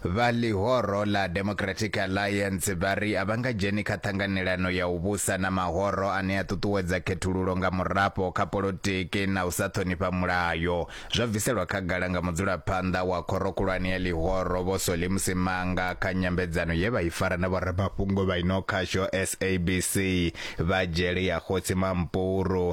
Vha ḽihoro ḽa Democratic Alliance vha ri a vha nga dzheni kha ṱhanganelano ya u vhusa na mahoro ane a ṱuṱuwedza khethululo nga murafho kha polotiki na u sa ṱhonifha mulayo. Zwo bviselwa khagala nga mudzulaphanḓa wa khoro khulwane ya ḽihoro Vho Solly Msimanga kha nyambedzano ye vha i fara na vhoramafhungo vha ino khasho SABC vha dzhele ya Kgotsi Mampuru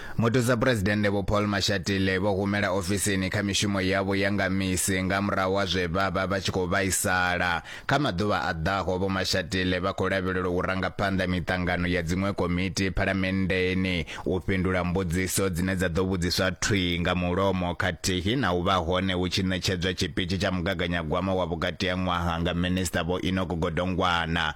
Muthusaphuresidennde Vho Paul Mashatile vho humela ofisini kha mishumo yavho ya nga misi nga murahu ha zwe vha vha vha tshi khou vhaisala. Kha maḓuvha a ḓaho, Vho Mashatile vha khou lavhelelwa u ranga phanḓa miṱangano ya dziṅwe komiti Phalamenndeni, u fhindula mbudziso dzine dza ḓo vhudziswa thwii nga mulomo khathihi na u vha hone hu tshi ṋetshedzwa tshipitshi tsha mugaganyagwama wa vhukati ha ṅwaha nga Minisṱa Vho Enoch Godongwana.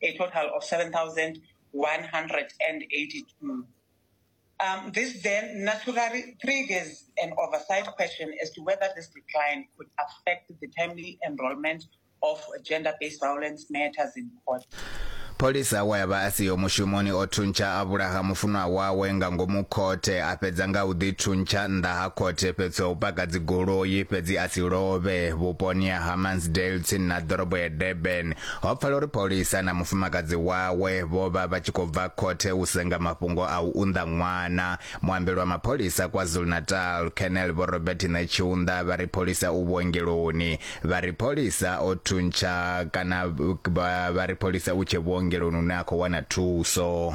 a total of 7,182. Um, this then naturally triggers an oversight question as to whether this decline could affect the timely enrollment of gender-based violence matters in court. pholisa awa ya vha a siho mushumoni o thuntsha a vhulaha mufunwa wawe nga ngomu khothe a fhedza nga u ḓithuntsha nnḓa ha khothe fhethu ha u paka dzigoloi fhedzi a si lovhe vhuponi ha hammansdale tsini na ḓorobo ya durban Ho pfala uri Paulisa na mufumakadzi wawe vho vha vha tshi khou bva khothe u senga mafhungo a u unḓa ṅwana. Muambeli wa mapholisa KwaZulu-Natal, Colonel Vho Robert Netshiunda vha ri Paulisa u vhuongeloni. Vha ri Paulisa o thuntsha kana vha ri Paulisa u tshe vhuongeloni hune a khou wana thuso.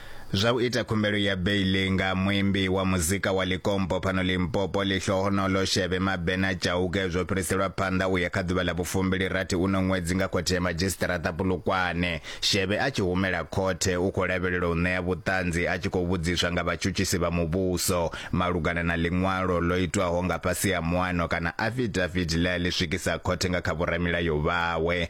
Zwa u ita khumbelo ya beiḽi nga muimbi wa muzika wa Likompo fhano Limpopo, Lihlohonolo Shebe Mabena Chauke zwo fhiriselwa phanḓa u ya kha ḓuvha ḽa vhufumbili rathi uno ṅwedzi nga khothe ya madzhisiṱaraṱa Polokwane. Shebe a tshi humela khothe u khou lavhelelwa u ṋea vhuṱanzi a tshi khou vhudziswa nga vhatshutshisi vha muvhuso malugana na ḽiṅwalo ḽo itwaho nga fhasi ha muano kana afidafidi ḽe a ḽi swikisa khothe nga kha vhoramilayo vhawe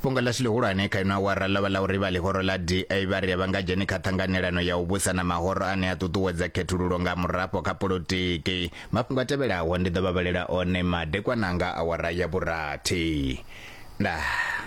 Fhungo ḽashu ḽihulwane kha ino awara ḽo vha ḽa uri vha ḽihoro ḽa DA vha ri a vha nga dzheni kha ṱhanganelano ya u vhusa na mahoro ane a ṱuṱuwedza khethululo nga murafho kha polotiki. Mafhungo a tevhelaho ndi ḓo vha vhalela one madekwana nga awara ya vhurathi. Ndaa.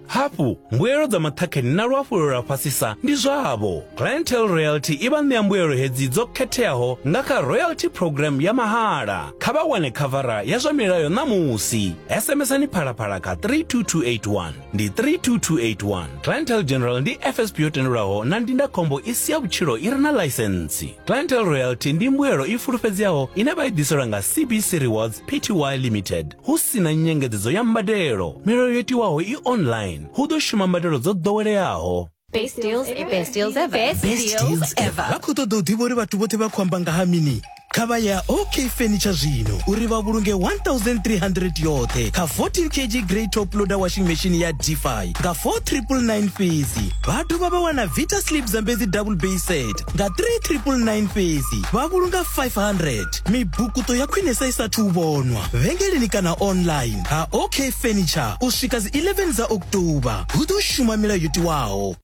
Hafhu, mbuelo dza maṱhakheni na luhafhulelo lwa fhasisa ndi zwavho. Clientele Royalty i vha ṋea mbuelo hedzi dzo khetheaho nga kha Royalty Programme ya mahala. Kha vha wane khavara ya zwa milayo ṋamusi. SMS-ani phalaphala kha 32281. Ndi 32281. Clientele General ndi FSP yo tendelwaho na ndindakhombo i si ya vhutshilo i re na ḽaisentsi. Clientele Royalty ndi mbuelo i fulufhedzeaho ine vha i ḓiselwa nga CBC Rewards Pty Limited. Hu si na nyengedzedzo ya mbadelo, milayo yo tiwaho i online, hu ḓo shuma mbadelo dzo ḓoweleaho. Best deals ever. Best deals ever. Best deals ever. vha khou ṱoḓa u ḓivha uri vhathu vhoṱhe vha khou amba nga ha mini kha vha ya ok furniture zwino uri vha vhulunge 1300 yoṱhe kha 14 kg grey top loader washing machine ya dfi nga 4999 fhedzi vha dovha vha wana vita slip zambedzi double bay set nga 3999 fhedzi vha vhulunga 500 mibukuṱo ya khwinesa i sathu vhonwa vhengeleni kana online ha ok furniture u swika dzi 11 dza oktoba hu ḓo shuma milayo yo tiwaho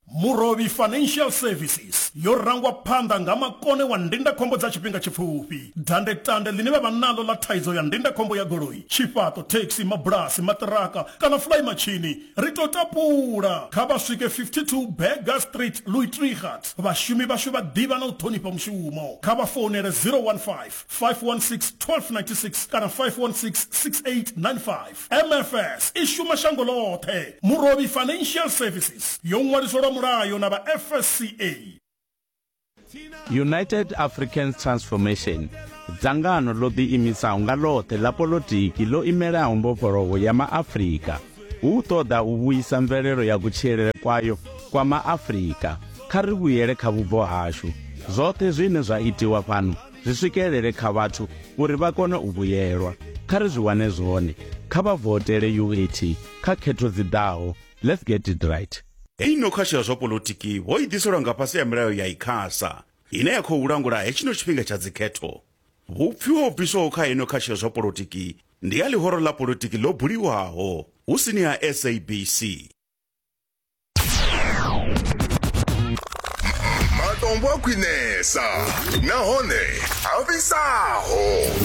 Murovhi Financial Services yo rangwa phanḓa nga makone wa ndindakhombo dza tshifhinga tshipfufhi. Dandetande ḽine vha vha naḽo ḽa thaidzo ya ndindakhombo ya goloi, tshifhaṱo, thekhisi, mabulasi, maṱiraka kana fulaimatshini Ri tou tapula, kha vha swike 52 Burger Street, Luitregat. Vhashumi vhashu vha ḓivha na u ṱhonifha mushumo. Kha vha founele 015 516 1296 kana 516 6895. MFS i shuma shango ḽoṱhe. Murovhi Financial Services yo ṅwaliswa lwa mulayo na vha FSCA. united african transformation dzangano ḽo ḓiimisaho nga ḽoṱhe ḽa polotiki ḽo imelaho mbofholowo ya maafrika hu ṱoḓa u vhuisa mvelelo ya kutshilele kwayo kwa maafrika kha ri vhuyele kha vhubvo hashu zwoṱhe zwine zwa itiwa fhano zwi swikelele kha vhathu uri vha kone u vhuyelwa kha ri zwi wane zwone kha vha votele uat kha khetho dzi ḓaho Let's get it right. Heyi no khasho ya zwa polotiki ho i ḓiselwa nga fhasi ya milayo ya ICASA ine ya khou langula hetshino tshifhinga tsha dzikhetho. Vhupfiwa ho bviswaho kha heino khasho ya zwa polotiki ndi ha ḽihoro ḽa polotiki ḽo buliwaho hu sini ha SABC. Matombo a khwinesa nahone a fhisaho.